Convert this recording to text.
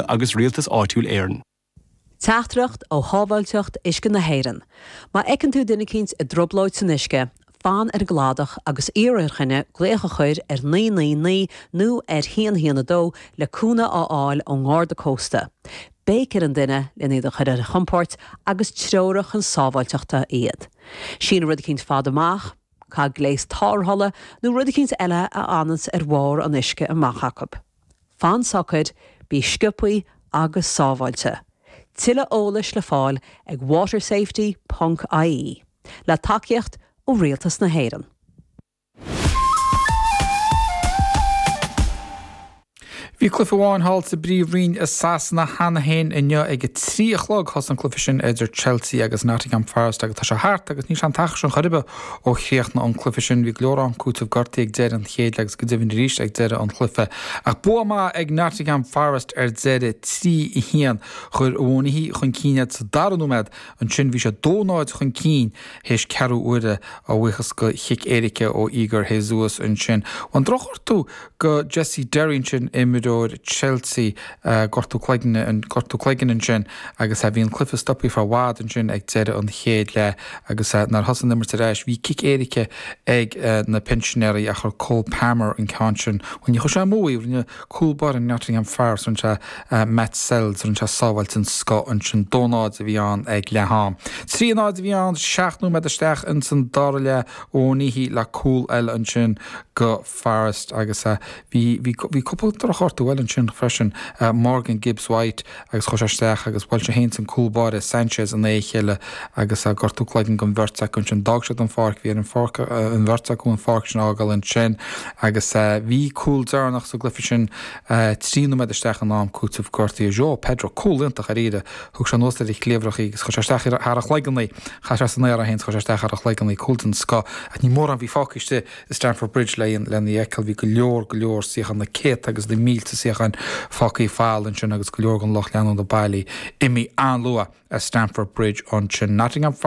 agus Rialtas Áitiúil Éireann. Teachtaireacht ó Shábháilteacht Uisce na hÉireann, Má fheiceann tú duine eicínt i dtroiblóid san uisce, fan ar an gcladach agus iarr ar dhuine glaoch a chur ar naoi naoi naoi nó ar haon haon a dó le cúnamh a fháil ón nGarda Cósta. Béic ar an duine len iad a chur ar a chompóirt agus treoraigh chun sábháilteachta iad. Sín rud eicínt fada amach, caith gléas tárrthála nó rud eicínt eile a fhananns ar bharr an uisce amach acu. Fan socair, bí sciopaí agus sábháilte. Tuilleadh eolais le fáil ag watersafety ponc ie, le tacaíocht ó Rialtas na hÉireann. Bhí cluiche amháin thall sa bpríomhroinn i Sasana cheana féin inniu ag a trí a chlog. Thosaigh an cluiche sin idir Chelsea agus Nottingham Forest agus tá sé thart agus níl sé an t-achar sin chor ar bith Ó chríochnaigh an cluife sin bhí go leor am cúiteamh gortaí ag deire an chéad leath agus go deimhin arís ag deire an chluife. Ach bua maith ag Nottingham Forest ar deire, trí, a haon. Chuir Awoniyi chun cinn iad sa dara nóimead, ansin bhí siad dó náid chun cinn théis ceathrú uaire, a bhuíochas go chic éirice ó Igor Jesus. Ansin bhain drochghortú go Jesse Derry ansin, imreoir Chelsea, gortú cloigne, an gortú cloigeann ansin agus bhí an cluiche stoptha ar feadh i bhfad ansin ag deireadh an chéad leath agus nuair a thosaigh an imirt arís, bhí cic éirice ag na Pinsinéirí ach chuir Cole Palmer an ceann sin. Bhuel, níor chuir sé amú í, rinne cúl báire Nottingham Forest, rinne sé Matz Sels, rinne sé sábháil den scoth ansin. Dó náid a bhí ann ag leath am. Trí náid a bhí ann seacht nóiméad isteach ins an dara leath, Awoniyi le cúl eile ansin go. Forest agus bhí bhí cúpla drochghortú eile ansin freisin, Morgan Gibbs White agus chuaigh sé isteach agus bhuail sé fhéin is an cúl báire Sanchez in aghaidh a chéile agus gortú cloiginn don bheirt acu ansin. D'fhág siad an pháirc, bhí ar an pháirc, an bheirt acu an pháirc sin a fhágáil ansin agus bhí cúl deireanach sa gcluiche sin trí nóiméad isteach in am cúiteamh gortaithe João Pedro, cúl iontach dáiríre, thug sé anuas ar a chliabhrach í agus chuir sé isteach thar a chloigeann í, chaith sé san aer é fhéin is chuir sé isteach thar a chloigeann í, cúl den scoth ach ní mórán a bhí fágtha istigh. I Stamford Bridge lena fheiceáil bhí go leor go leor suíocháin, na céadta agus na mílte suíocháin fágthaí folamh ansin agus go leor den lucht leanúna bailithe, imithe an-luath as Stamford Bridge ansin. Nottingham Forest.